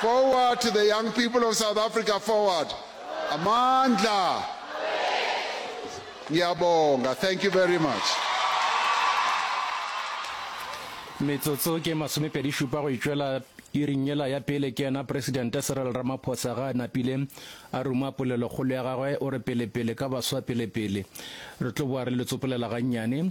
Forward to the young people of South Africa forward Amandla Ngiyabonga thank you very much. Metsotso ke masomepedi šupa go itšwela iring yela ya pele ke yena Presidente Cyril Ramaphosa ga a napile a ruma polelokgolo ya gagwe o re pelepele ka baswa pelepele re tlo boa re le tsopolela gannyane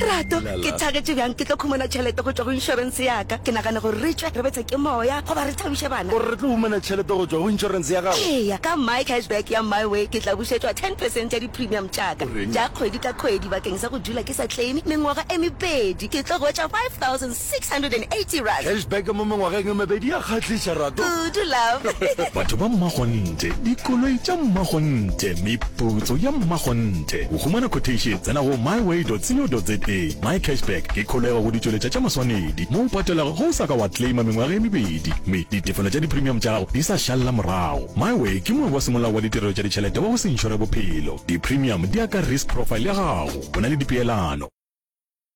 Rato, ke thagetše bjang ke tlo khumana tšhelete go tšwa go inšorense yaka. Ke nagane gore re tšwe re betswe ke moya goba re thabiše bana. O re re tlo humana tšhelete go tšwa go inšorense ya gago? Eya, ka My Cashback ya MyWay ke tla bušetšwa ten percent ya di-premium tšaka tša kgwedi ka kgwedi bakeng sa go dula ke sa claime mengwaga e mebedi. Ke tlo hwetša five thousand. 680 rands. Cashback mo mengwageng e mebedi ya kgahliša rato. Kudu love. Batho ba Mmakgonthe, dikoloi tša Mmakgonthe, meputso ya Mmakgonthe. Go humana quotation tsena go myway.co.za. MyCashback ke kholego go ditšweletša tša maswanedi mo o patelago ge o sa ka wa claima mengwaga e mebedi mme ditefelo tša dipremium tša gago di sa šalela morago. MyWay ke moabi wa semolao wa ditirelo tša ditšhelete wa go se inšore bophelo. Dipremium di ya ka risk profile ya gago. Go na le dipeelano.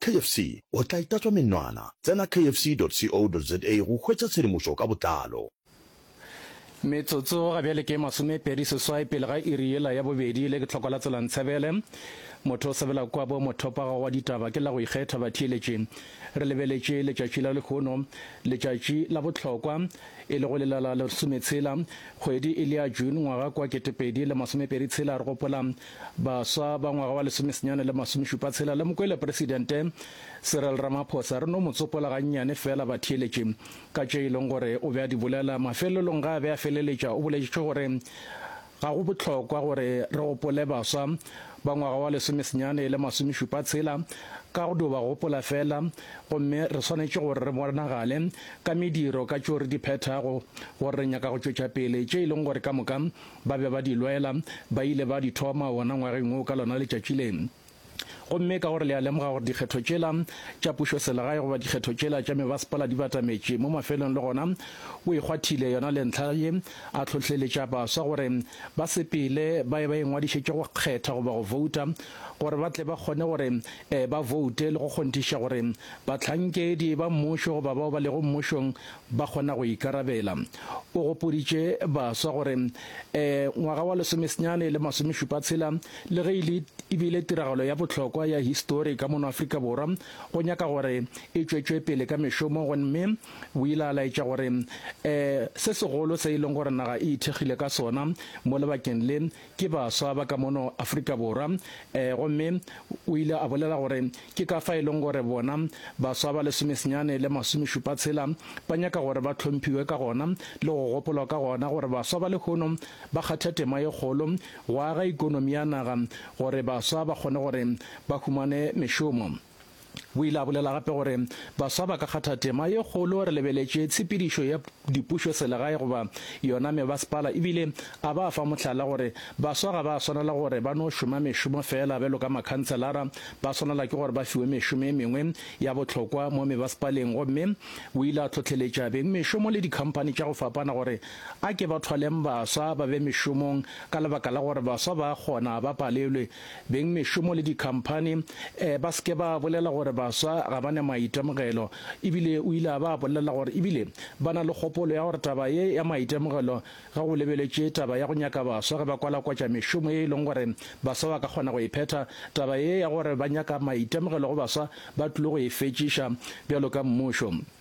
KFC, o tla itatswa menwana. Tsena kfc.co.za go hwetša tshedimošo ka botlalo. Metsotso ga bjale ke masomepedi seswai pele ga iri yela ya bobedi. Le ke tlhoko la tsela Ntshebele. Motho o sebela kua bo mothopaga wa ditaba ke la go ikgetha batheeletši. Re lebeletše letšatši la lehono, letšatši la bohlokwa, e lego lela la lesometshela, kgwedi e le ya June, ngwaga kwa ketepedi le masomepedi tshela. Re gopola Baswa ba ngwaga wa lesomesenyane le masomešupa tshela le Mokwelepresidente Cyril Ramaphosa re no mo tsopola gannyane feela batheeletše ka tše e leng gore o be a di bolela. Mafelelong ge a be a feleletša o boletše gore ga go bohlokwa gore re gopole baswa ba ngwaga wa lesomesenyane le masomešupa tshela ka go dio ba gopola feela gomme re swanetše gore re bonagale ka mediro ka tšeo re di phethago gore re nyaka go tšwetša pele tše e leng gore ka moka Ba be ba di lwela, ba ile ba di thoma wona ngwageng wo ka lona letšatši le. Gomme ka gore le a lemoga gore dikgetho tšela tša pušoselegae goba dikgetho tšela tša mebasepala di batametše mo mafelong le gona o e kgwathile yona le ntlha ye, a hlohleletša baswa gore ba sepele ba ye ba ingwadišetše go kgetha goba go vouta gore ba tle ba kgone gore ba voute le go kgonthiša gore bahlankedi ba mmušo goba bao ba lego mmušong ba kgona go ikarabela. O gopoditše baswa gore ee, ngwaga wa lesomesenyane le masomešupa tshela le ge e le e bile tiragalo ya bohlokwa ya histori ka mono Afrika Borwa, go nyaka gore e tšwetšwe pele ka mešomo gomme o ile a laetša gore ee, se segolo se e leng gore naga e ithekgile ka sona mo lebakeng le Ke baswa ba ka mono Afrika Borwa. Ee, gomme o ile a bolela gore ke ka fa e lego gore bona baswa ba lesomesenyane le masomešupatshela ba nyaka gore ba hlomphiwe ka gona le go gopolwa ka gona gore baswa ba lehono ba kgatha tema ye kgolo go aga ekonomi ya naga gore baswa ba kgone gore ba humane mešomo. O ile a bolela gape gore baswa ba ka kgatha tema ye kgolo re lebeletše tshepedišo ya dipušoselegae goba yona mebasepala ebile a ba fa mohlala gore baswa ga ba swanela gore ba no šoma mešomo feela bjalo ka makhanselara, ba swanela ke gore ba fiwe mešomo e mengwe ya bohlokwa mo mebasepaleng. Gomme o ile a tlhohleletša beng mešomo le dikhamphani tša go fapana gore a ke ba thwaleng baswa ba be mešomong ka lebaka la gore baswa ba a kgona, ba palelwe Beng mešomo le dikhamphani eh, ba se ke ba bolela gore baswa ga ba ne maitemogelo, e bile o ile a ba bolelela gore e bile ba na le kgopolo ya gore taba ye ya maitemogelo ge go lebeletšwe taba ya go nyaka baswa ge ba kwalakwatša mešomo ye e leng gore baswa ba ka kgona go e phetha, taba ye ya gore ba nyaka maitemogelo go baswa ba tlile go e fetšiša bjalo ka mmušo.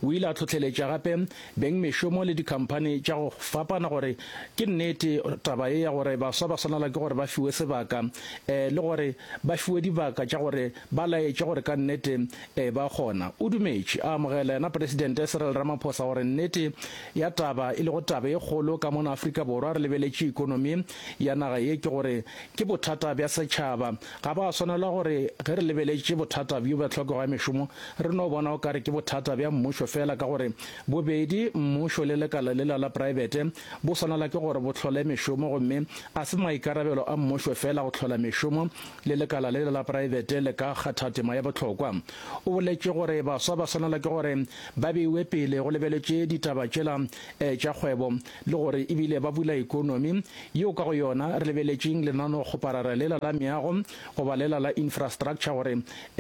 O ile a tlhohleletša gape bengmešomo le dikhamphani tša go fapana gore ke nnete taba ye ya gore baswa ba swanela ke gore ba fiwe sebaka um le gore ba fiwe dibaka tša gore ba laetše gore ka nnete um ba kgona. O dumetše a amogela yena Presidente Cyril Ramaphosa gore nnete ya taba e lego taba e kgolo ka mona Afrika Borwa re lebeletše ekonomi ya naga ye ke gore ke bothata bja setšhaba Ga ba swanela gore ge re lebeletše bothata bjo bja tlhokego ya mešomo re no bona o ka re ke bothata bja mmušo feela ka gore bobedi mmušo le lekala lela la praebete bo swanela ke gore bo hlole mešomo gomme a se maikarabelo a mmušo feela go hlola mešomo le lekala lela la praebete le ka kgatha tema ya bohlokwa. O boletše gore baswa ba swanela ke gore ba beiwe pele go lebeletše ditaba tšela eh, tša kgwebo le gore e bile ba bula ekonomi yeo ka go yona re lebeletšeng lenaneokgoparara lela la meago goba lela la infrastructure gore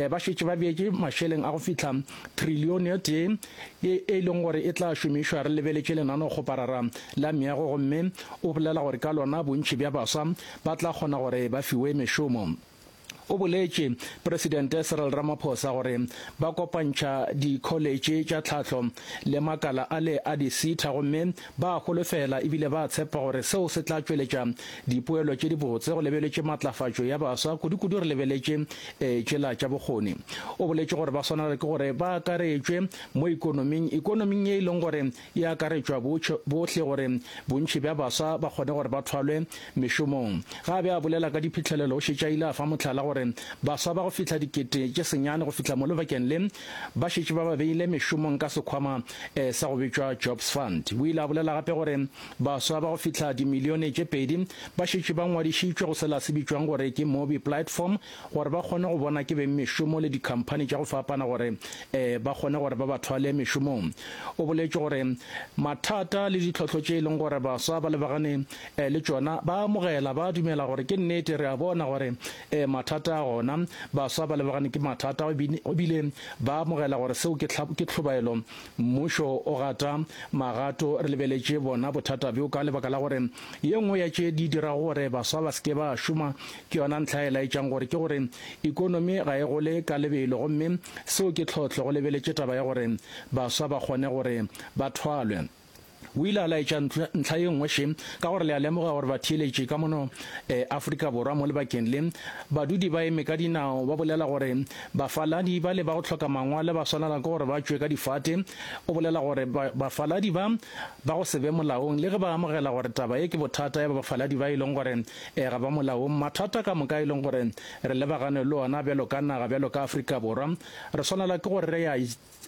ba šetše ba beetše mašeleng a go fihla trillione e tee e e leng gore e tla šomišwa re lebeletše lenaneokgoparara la meago gomme o bolela gore ka lona bontši bja baswa ba tla kgona gore ba fiwe mešomo. o boletše Presidente Cyril Ramaphosa gore ba kopantšha dikholetše tša tlhahlo le makala a le a disitha gomme ba a holofela ebile ba a tshepa gore seo se tla tšweletša dipoelo tše dibotse go lebeletše matlafatšo ya baswa kudukudu re lebeletše e tšela tša bokgoni. O boletše gore ba swanela ke gore ba akaretšwe mo ikonoming ikonoming ye e leng gore e akaretšwa botšho bohle gore bontši bja baswa ba kgone gore ba thwalwe mešomong. Ge a be a bolela ka diphihlelelo o šetše a ile a fa mohlala gore baswa ba go fihla dikete tše senyane go fihla mo lebakeng le ba šetše ba ba beile mešomong ka sekhwama sa go bitšwa Jobs Fund. O ile a bolela gape gore baswa ba go fihla dimilione tše pedi ba šetše ba ngwadišitšwe go sela se bitšwang gore ke Mobi Platform gore ba kgone go bona ke beng mešomo le dikhamphani tša go fapana gore um ba kgone gore ba ba thwale mešomong. O boletše gore mathata le ditlhohlo tše e leng gore baswa ba lebagane um le tšona ba amogela, ba dumela gore ke nnete re a bona gore um mathata a gona, baswa ba lebagane ke mathata e bile ba amogela gore seo ke ke tlhobaelo. Mmušo o gata magato re lebeletše bona bothata bjo ka lebaka la gore ye nngwe ya tše di dirago gore baswa ba se ke ba šoma Ke yona ntlha e laetšang gore ke gore ikonomi ga e gole ka lebelo gomme seo ke tlhohlo go lebeletše taba ya gore baswa ba kgone gore ba thwalwe. O ile a laetša ntlha ye nngwe še ka gore le a lemoga gore batheeletši ka mono Afrika Borwa mo lebakeng le badudi ba eme ka dinao ba bolela gore bafaladi ba le ba go hloka mangwale ba swanela ke gore ba tšwe ka difate. O bolela gore bafaladi ba ba go se be molaong le ge ba amogela gore taba ye ke bothata ya bafaladi ba e leng gore Ee, ga ba molaong. Mathata ka moka e leng gore re lebagane le ona bjalo ka naga, bjalo ka Afrika Borwa, re swanela ke gore re a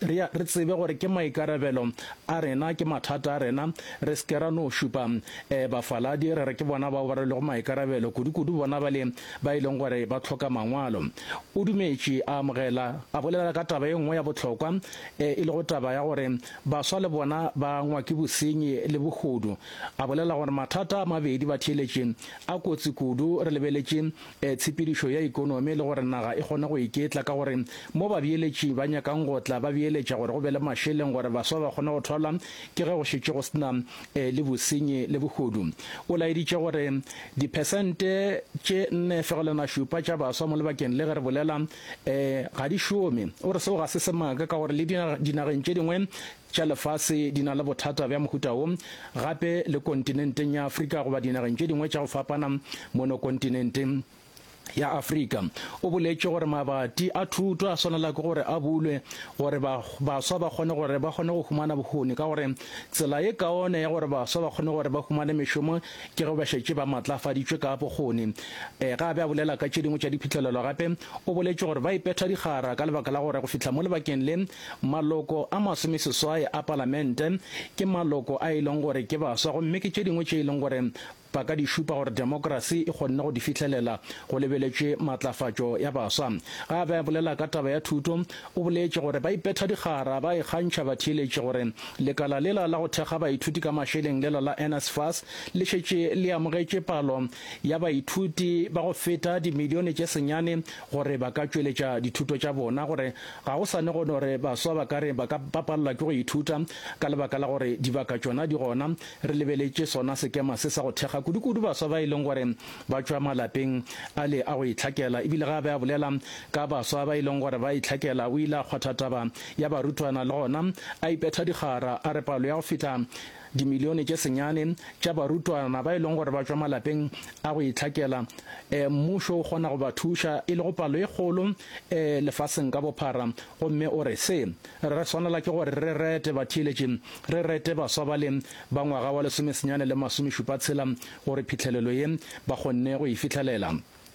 re a re tsebe gore ke maikarabelo a rena, ke mathata a rena, re se ke ra no šupa um bafaladi re re ke bona bao ba rwelego maikarabelo, kudu-kudu bona bale ba e leng gore ba hloka mangwalo. O dumetše, a amogela, a bolela ka taba e nngwe ya bohlokwa, um e lego taba ya gore baswa le bona ba ngwa ke bosenyi le bohodu. A bolela gore mathata a mabedi ba theeletše a kotsi kudu, re lebeletše tshepedišo ya ekonomi le gore naga e kgone go iketla ka gore mo babeeletši ba nyakang go tla ba beeletša gore go be le mašeleng gore baswa ba kgone go thwalwa ke ge go šetše go se na le bosenyi le bohodu. O laeditše gore diphesente tše nne fegelwana šupa tša baswa mo lebakeng le ge re bolela ga di šome. O re seo ga se semaka ka gore le dinageng tše dingwe tša lefase di na le bothata bja mohuta wo, gape le kontinenteng ya Afrika goba dinageng tše dingwe tša go fapana mono kontinenteng ya Afrika. O boletše gore mabati a thuto a swanela ke gore a bulwe gore ba, baswa ba kgone gore ba kgone go humana bohoni ka gore tsela ye kaone ya gore baswa ba kgone gore ba humane mešomo ke ge ba šetše ba matlafaditšwe ka bokgoni. E, ga a be a bolela ka tše dingwe tša diphihlelelo gape o boletše gore ba ipetha dikgara ka lebaka la gore go fihla mo lebakeng le Maloko a masomeseswai a Palamente ke maloko a e leng gore ke baswa gomme ke tše dingwe tše e leng gore ba ka di šupa gore demokrasi e kgonne go di fihlelela go lebeletšwe matlafatšo ya baswa. Ge a be a bolela ka taba ya thuto, o boletše gore ba ipetha dikgara ba ikgantšha batheeletši gore lekala lela la go thekga baithuti ka mašeleng lela la NSFAS le šetše le amogetše palo ya baithuti ba go feta dimilione tše senyane gore ba ka tšweletša dithuto tša bona gore Ga go sane gona gore baswa ba ka re ba ka ba palelwa ke go ithuta ka lebaka la gore dibaka tšona di gona. Re lebeletše sona sekema se sa go thekga kudukudu baswa ba e leng gore ba tšwa malapeng a le a go itlhakela. E bile ge a be a bolela ka baswa ba e leng gore ba itlhakela, o ile a kgwatha taba ya barutwana le gona a ipetha dikgara a re palo ya go fihla Dimilione tše senyane tša barutwana ba e leng gore ba tšwa malapeng a go itlhakela, e, mmušo o kgona go ba thuša, e lego palo e kgolo, e, lefaseng ka bophara. Gomme o re, Se, re swanela ke gore re rete batheeletši, re rete baswa bale ba ngwaga wa lesomesenyane le masomešupatshela, gore phihlelelo ye ba kgonne go e fihlelela.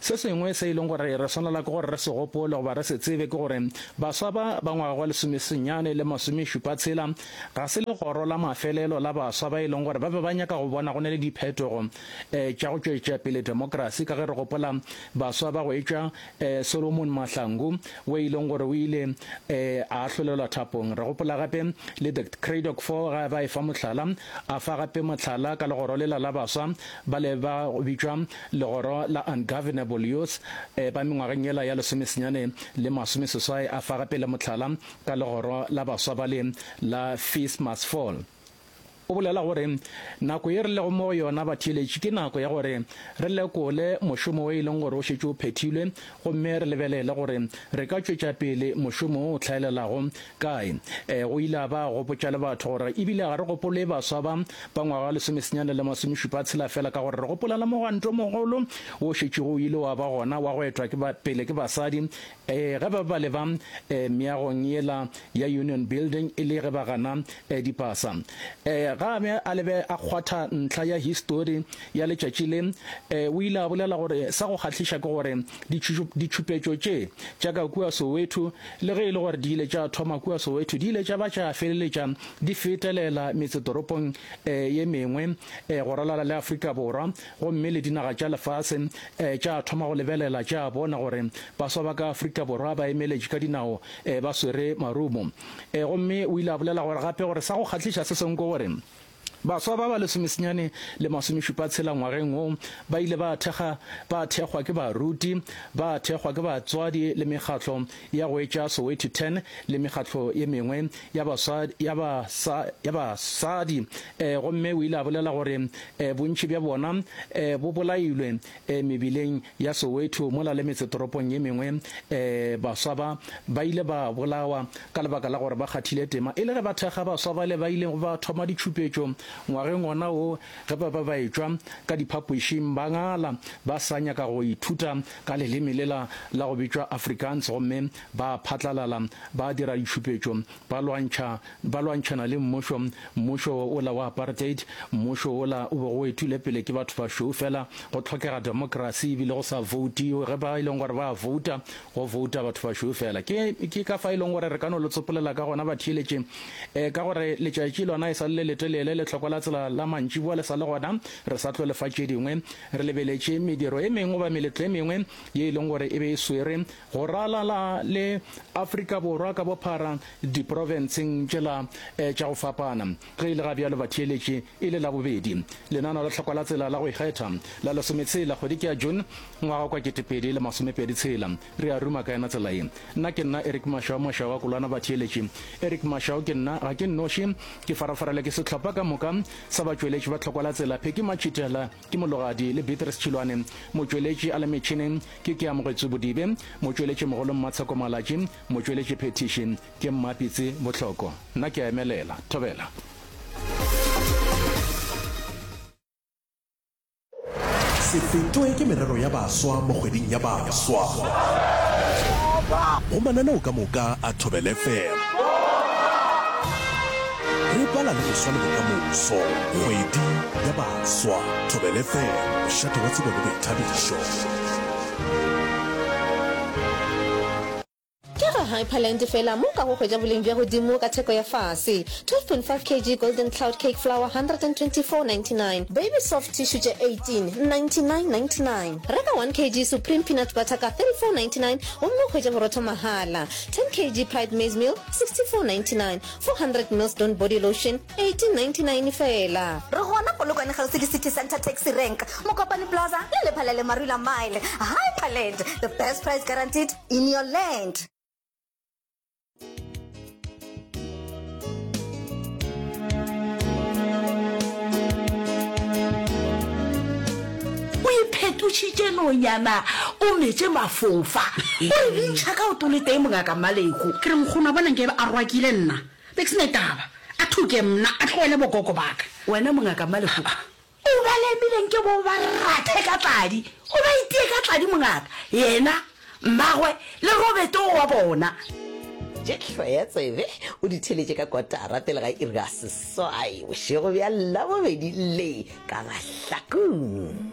Se sengwe se e leng gore re swanela ke gore re se gopole goba re se tsebe ke gore baswa ba ba ngwaga wa lesomesenyane le masomešupa tshela ga se legoro la mafelelo la baswa ba e leng gore ba be ba nyaka go bona go na le diphetogo um tša go tšwetša pele temokerasi ka ge re gopola baswa ba go etšwa um Solomon Mahlangu wo e leng gore o ile um a ahlolelwa thapong re gopola gape le the Cradock Four ga ba e fa mohlala a fa gape mohlala ka legoro lela la baswa ba le ba bitšwa Legoro la Ungovernable Youth e ba mengwageng yela ya lesomesenyane le masomeseswai a fa gape le mohlala ka legoro la baswa bale la Fees Must Fall. O bolela gore, Nako ye re lego mo go yona batheeletši ke nako ya gore re lekole mošomo wo e leng gore o šetše o phethilwe gomme re lebelele gore re ka tšwetša pele mošomo wo o hlaelelago Kae? Ee, o ile a ba a gopotša le batho gore e bile ga re gopole baswa ba ba ngwaga lesomesenyane le masomešupa tshela fela ka gore re gopolela mogwanto o mogolo wo šetšego o ile wa ba gona wa go etwa ke ba, pele ke basadi ee, ge ba ba le ba ee, meagong yela ya Union Building e le ge ba gana ee, dipasa. Ee, ga a be a lebe a kgwatha ntlha ya histori ya letšatši le. Ee, o ile a bolela gore sa go kgahliša ke gore ditšhupetšo tše tša ka kua Soweto Le ge e le gore di ile tša thoma kua Soweto, di ile tša ba tša feleletša di fetelela metsetoropong e ye mengwe e go ralala le Afrika Borwa gomme le dinaga tša lefase e tša thoma go lebelela tša bona gore baswa ba ka Afrika Borwa ba emeletše ka dinao e ba swere marumo. E gomme o ile a bolela gore gape gore sa go kgahliša se sengwe ke gore Baswa ba ba lesomesenyane le masomešupatshela ngwageng wo ba ile ba thekga ba thekgwa ke baruti, ba thekgwa ke batswadi le mekgatlo ya go etša Soweto Ten le mekgatlo ye mengwe ya baswa ya ba sa ya basadi, eh, gomme o ile a bolela gore eh, bontši bja bona eh, bo bolailwe E, mebileng ya Soweto mola le metsetoropong ye mengwe, e, baswa ba, ba ile ba bolawa ka lebaka la gore ba kgathile tema. E le ge ba thekga baswa bale ba ilego ba thoma ditšhupetšo ngwageng wona wo, ge ba be ba etšwa ka diphapošing, ba ngala, ba sa nyaka go ithuta ka leleme lela la go bitšwa Afrikaans, gomme ba phatlalala ba dira ditšhupetšo Ba lwantšha, ba lwantšhana le mmušo, mmušo wola wa apartheid, mmušo wola o bego o ethilwe pele ke batho bašweu fela. Go tlhokega demokrasi, ebile go sa voutiwe. Ge ba e leng gore ba a vouta, go vouta batho bašweu fela. Ke, ke ka fa e leng gore re ka no lo tsopolela ka gona, batheeletše, eh, ka gore letšatši lona e sa le le letelele, lehlokwa la tsela la mantšiboa le sa le gona. Re sa tlo le fa tše dingwe. Re lebeletše mediro e mengwe goba meletlo e mengwe ye e leng gore e be e swerwe, go ralala le Afrika Borwa ka bophara diprofenseng tšela eh, tša go fapana. Ge e le ga bjalo batheeletše e le la bobedi lenaneo la tlhokwa la tsela la go ikgetha la lesometshela kgwedi ke ya June ngwaga kwa ketepedi le masomepedi tshela re a ruma ka yena tsela ye. Nna ke nna Eric Mashao Mashao wa Kolwana Batheeletše Eric Mashao ke nna ga ke nnoši ke farafarela ke sehlopha ka moka sa batšweletši ba tlhokwa la tsela Pheki Machitela Ke Mologadi le Beatrice Tšhilwane, motšweletši a le metšhineng ke Keamogetso Bodibe, motšweletšimogolo Mmatsheko Malatši, motšweletši phethiši ke Mmapitsi Bohloko. Nna ke a emelela. Thobela. Se fetwe ke merero ya baswa mo kgweding ya baswa go mananeo ka moka a Thobela FM. Re bala le boswa le bokamoso kgwedi ya baswa. Swa, Thobela FM, mošate wa tsebo le boithabišo. Ke ga Hyperland fela mo ka go hwetša boleng bja godimo ka theko ya fase. 12.5 kg Golden Cloud Cake Flour 124.99. Baby Soft Tissue tše 18 99.99. Reka 1 kg Supreme Peanut Butter ka 34.99 gomme o hwetše borotho mahala. 10 kg Pride Maize Meal 64.99. 400 ml Dawn Body Lotion 1899 fela. Re gona Polokwane kgauswi le City Centre Taxi Rank, Mokopane Plaza le lepha la Lemarula Mile. Hyperland, the best price guaranteed in your land. O iphetotšitše nonyana o metše mafofa. O re bintšha ka o toletee mongaka Maleko. Ke re nkgono a bona nke a rwakile nna. Be ke se na taba. A thuke mna, a tlogele bogogo ba ka. Wena mongaka Malehuka, o ba lemile nke bo ba rathe ka tladi. O ba itie ka tladi mongaka, yena, mmagwe le Robert o wa bona. Tše hloya tsebe o di theletše ka kotara pele ga iri ya seswai bošego bja Labobedi le ka mahlakung.